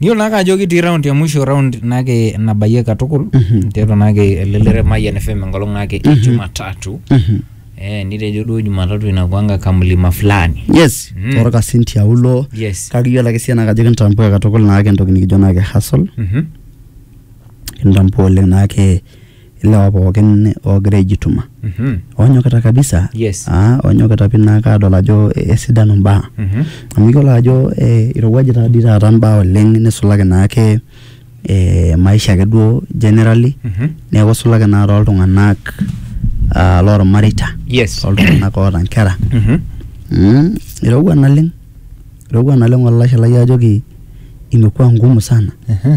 Niyiolo naake ajo kitii round ya mwisho round naake nabayie katukul tiatua naake ele lere Mayian FM enkolong naake e Jumatatu Mhm. eh, nitejo duo Jumatatu inakuanga kamlima fulani yes Mm. torkasin tiaulo yes kake iyiolo ake siana kajo kintambua katukul naake entoki nikijo naake hustle mhm. kintambua oleng naake ilewa pookin oogira aijituma Mhm. oonyokita kabisa Yes. ah, oonyokita pii naa kaadol ajo eh, esidanu imbaa Mhm. amu iyiolo ajo eh, irowuaje taa dii taata imbaa oleng nisulaki naake eh, maisha ake duo generally Mhm. neeku isulaki naa tooltung'anak ah, loormareita Yes. tooltung'anak oota inkera Mhm. Mm, irowua naleng irowua naleng olashe lai ajoki imekuwa ngumu sana Mhm.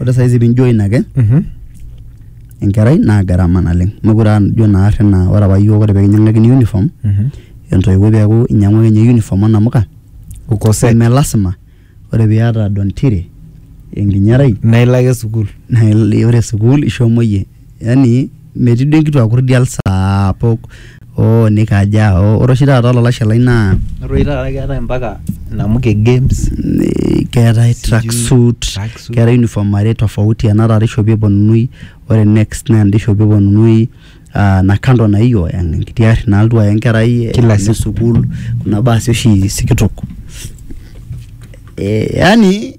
Ore saizi pee ijoin ake enkerai naa garama naleng'. Mekure aa ijo naa ari naa ore apa iyiok pee kinyiang'akini uniform entoiwuoi peeku inyiang'ua ninye uniform o namuka neme lasima ore pee iyata don tire enkinyarai naa ilo ake sukuul naa ore sukuul ishomo iyie. yani metii duo enkituaa kurdial saapuk oo nikaja oo ore oshi taata olalashe lai naa Ore oshi taata keetae mpaka namuka e games eh, keetae track suit tracksuit. keetae uniform are tofauti ena taata ishopi eponunui ore next naa enda ishopi eponunui ah, na kando na hiyo en- enkiti arri nalotu aya enkerai eh, Kila alo siku. sukuul kuna baasi oshi sikitok eh, yani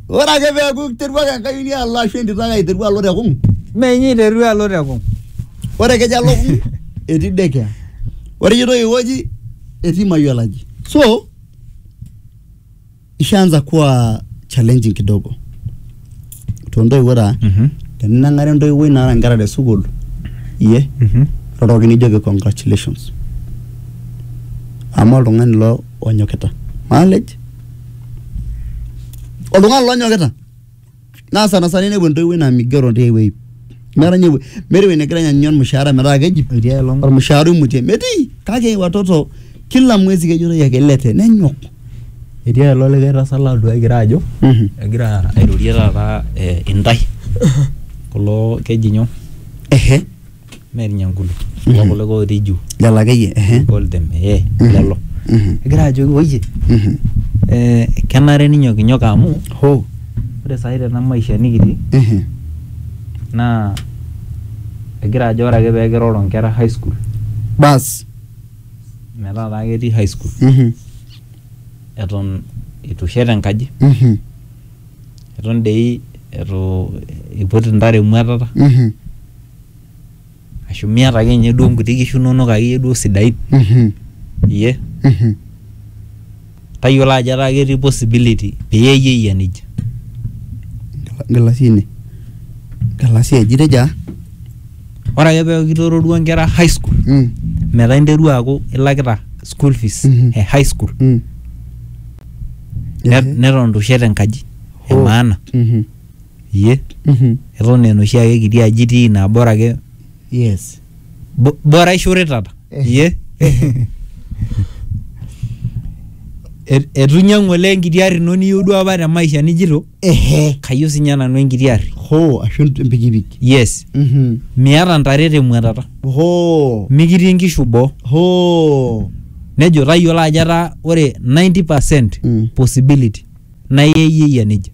Ore ake peeku iterua ake enkayioni alo ashu entito ake aiteru alo te kung', Mee inye iterua alo te kung'. ore ekejo alo kung' etii daycare. Ore ejoito ai wueji etii mayiolo aji. So ishaanza kuwa challenging kidogo too ntoiwuo taa. Mhm. Teninang'are entoiwuoi naata nkera te sukuul iyie Mhm. iroroki nijoki congratulations. Amu oltung'ani ilo onyokita. Maalej oltung'ani lonyokita naa sana sana inepu entoiwuoi naa migero tiai wueji meeta ninye ewuei- meeta ewueji negira anyanyu ormushaara metaa keji Etii aelong. ormushaara oimutie metii kake watoto kila mwezi kejitoi ake ilete nenyok Etii aelong likae tasat latodua egira ajo Mhm. egira airorie taata eh, intae kulo keji nyoo ehe mee irnyankulu kulo kulo otii juu lelo akeyie ehe we call them eh lelo Mhm. egira ajoki woyie Mhm. eh, kenare ninyokinyok amu ho ore saai tena maisha nikitii ehe naa egira ajo ore ake pee kiroro nkera high school bas metaa taa ketii high school Mhm. eton eitu ishet enkaji Mhm. eton dei eitu iput intare emuatata Mhm. ashu miata ake ninye duo nkuti kishu inonok akeyie duo sidain Mhm. iyie Mhm. tayiolo ajo etaa ketii possibility peyie iyie eyia nejia Galasi ine. Galasi eji teja. ore ake peeku kitooruo nkera high school Mm. metaa interua aaku ilakita school fees Mhm. e high school Mm. ne- Ehe. neton itu ishet enkaji Oh. emaana Mhm. Iyie? Mhm. Eton aa enoshi ake kiti aji itii naa bora ake Yes. bo- bora ishortata. Iyie? Et- Etu inyang'u olee enkiti arri ino niyieu duo apa te maisha nijito Ehe. kayieu sinye nanu enkiti arri. Hoo, ashu empikipiki. Yes. Mhm. Miata ntare te muatata. Hoo. Mikitii inkishu boo. Hoo. Nejo tayiolo ajo etaa ore 90% Mm. possibility naa iyie iyieyia nejia.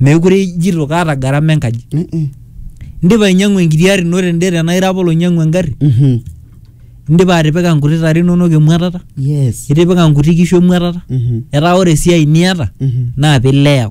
meekure ijito kaata gharama enkaji Mm-mm. indipa ainyiang'u enkiti ari ino tende tenaa ira apa oloinyiang'u engarri Mhm. indipa atipika nkuti tare inonok emuatata yes itipika nkuti kishu emuatata Mhm. etaa ore esiai niata Mhm. naa pileya